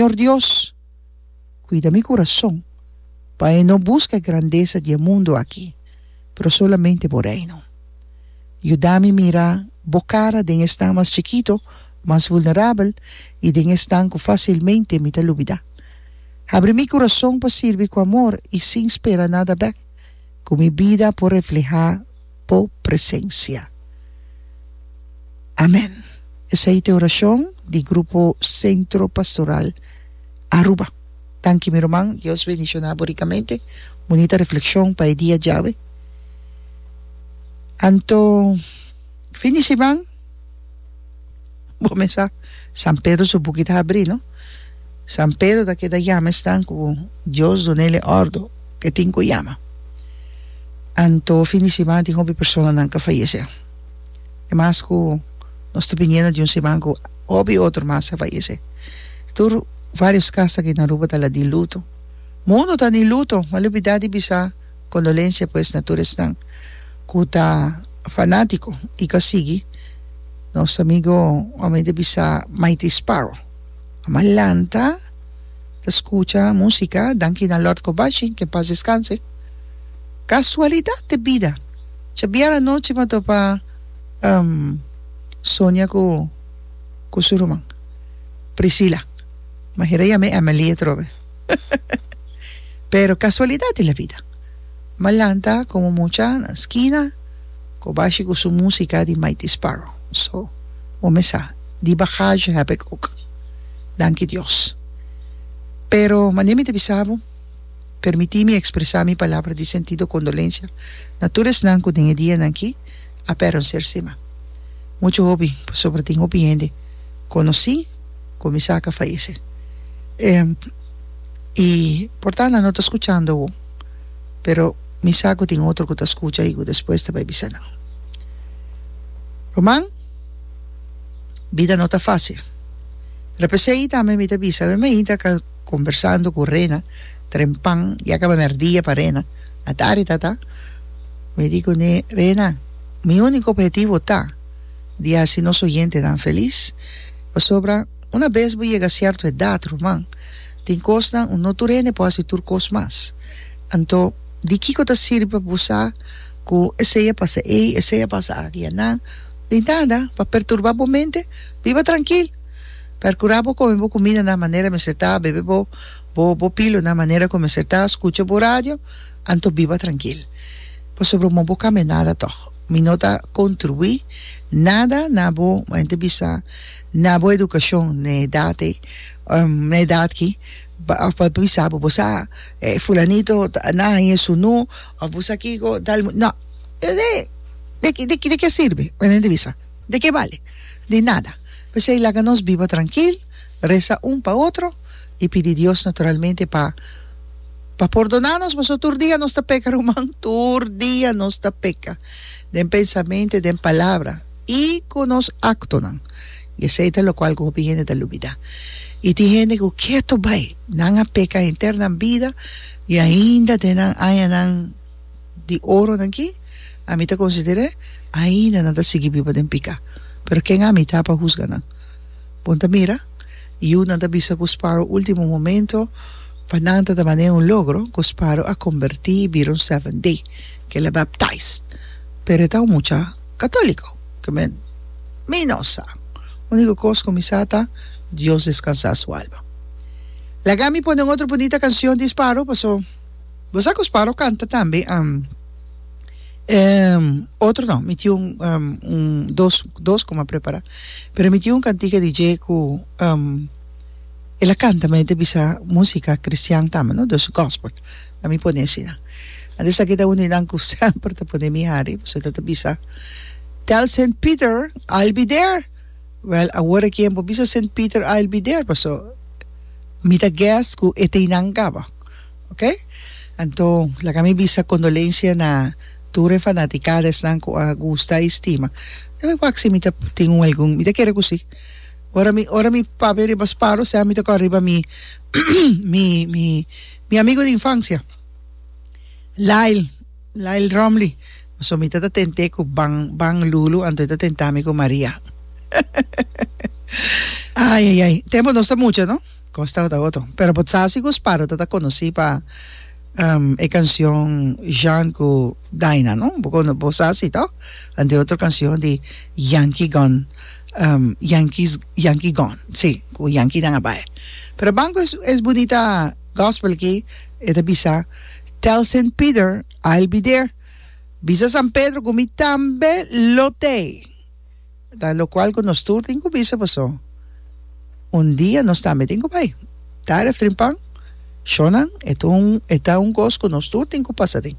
Señor Dios, cuida mi curason, pa e no busca e grandesa di e mundo aki, pero solamente bo Reino. Yuda mi mira bo cara den esnan mas chikito, mas vulnerabel i den esnan cu facilmente mi ta lubida. Habri mi curason pa sirbi cu amor i sin spera nada bek, cu mi bida por refleha bo presencia. Amen. Esei ta e oracion di grupo Centro Pastoral Aruba. Danki mi ruman, Dios bendiciona bo ricamente. Bunita reflexion pa e dia djawe. Anto fin di siman. Bo mes sa, San Pedro su buki ta habrí, no? San Pedro ta keda yama esnan ku Dios duna el e òrdu ku e tin ku yama. Anto fin di siman tin hopi personanan ku a fayesé. E mas ku nos ta biniendo di un siman ku hopi otro mas a fayesé. Tur vários kas aki na Aruba ta la di luto. Mundu ta di luto, m'a lubidaa di bisa. Condolencia pues na tur esnan cu ta fanatico y ta sigui nos amigo hombre de bisa Mighty Sparrow. Mama lanta ta scucha musica danki na Lord Cobashi que en paz descanse. Casualidad de bida djabiera anochi m'a topa Sonia cu cu su ruman Priscila. M'a hera yam'e Emily atrobe. Pero kasualidat di la vida, Malanta komo mucha na skina kobashi ku su musika di Mighty Sparrow. So, bo mesa, di bagaje hèb ek òk. Danki Dios. Pero mane mi ta bisa bo, permití mi ekspresá mi palabra di sentido kondolensia na tur esnan ku den e dianan aki a pèrdonser sima. Muchu hopi, pasobra tin hopi hende konosí, kuminsá ka fayesé. I por tanda no ta skuchando awo, pero mi sa ku tin otro ku ta skucha i ku despues ta bai bisa nan. Ruman, bida no ta fásil, pero p'esei ei tambe mi ta bisa, mi mai ta kombersando ku Rena trempan, ya kaba mèrdia pa Rena, a tari tata, mi di kuné, Rena, mi úniko ophetivo ta. di hasi nos oyentenan felis. Pasobra una bes bo yega sierto edat, ruman, tin kosnan un no tur hende por hasi tur kos mas. Anto, di kiko ta sirbi pa bo sa ku esei a pasa ei, esei a pasa aki? Aná, di nada, pa perturba bo mente. Biba trankil. Perkura bo kome bo kumida na manera mester ta, bebe bo bo pilo na manera ku mester ta, skucha bo radio, anto biba trankil. Pasobra mo bo kambia nada tòg. Mi no ta contribuí nada na bo, mayen ta bisa, na bo educacion na edad ei, na edad ki, of pa bisa bo bo sa fulanito na haña e su nu, of bo sa kico, tal, no, de ki, de ki a sirbi? Mayen ta bisa, de ki a bali? Di nada, p'esei laga nos biba trankil. Resa un pa otro i pidi Dios naturalmente pa pa pordona nos, pasobra tur dia nos ta peka ruman, tur dia nos ta peka den pensamente, den palabra i ku nos aktonan, i esei ta lokual ku hopi hende ta lubida. I tin hende ku ketu bai, nan a peka henter nan bida i ainda den nan añanan di oronan aki ami ta konsider'é ainda nan ta sigui biba den piká, pero ken ami ta pa husga nan? Bon ta mira, yiunan ta bisa ku Sparrow último momento pa nan ta ta manee un logro ku Sparrow a kombertí i bira un Seventh Day, ku el a baptized. Pero e ta un mucha katóliko, ke men mi no sa. Úniko kos ku mi sa ta, Dios deskansá su alma. Laga mi pone un otro bunita kanshon di Sparrow, paso bo sa ku Sparrow kanta tambe. Ehm, otro no, mi tin un, ehm, un, dos, dos ku mi a prepará, pero mi tin un kantika di dje ku, ehm, el a kanta, ma e ta bisa músika kristian tambe, no? Dus gòspel, a mi pone asina. Anto esaki ta un di nan ku semper ta pone mi hari, pasobra ta ta bisa, Tell Saint Peter I'll be there! Wèl, awor aki e por bisa Saint Peter I'll be there, pasobra mi ta gès ku e teinan kaba. Ok, anto laga mi bisa condolencia na tur e fanaticades nan cu a gusta y stima. Lo mi wak si mi ta tin un algun, mi ta kere cu si. Ora mi ora mi papi ariba Sparrow sea mi ta kor riba mi mi mi mi amigo di infancia Lyle Lyle Romly so mi ta ta tente cu ban ban Lulu anto e ta tenta mi cu Maria ay ay ay tempo nos ta mucha no. Como sta ta otro. Pero bo sa si cu Sparrow ta ta conoci pa e cancion Jean cu Daina no? Bo cono bo sa si toch? Ante otro cancion di Yankee Gun Yankees Yankee Gun si cu Yankee nan a bay. Pero banco es es bunita gospel aki e ta bisa Tell Saint Peter I'll be there bisa San Pedro cu mi tambe lo tey. Ta locual cu nos tur tin cu bisa boso, Un dia nos tambe tin cu bay. Dar ef trinpan, Shonan, e ta un cos cu nos tur tin cu pasa tin.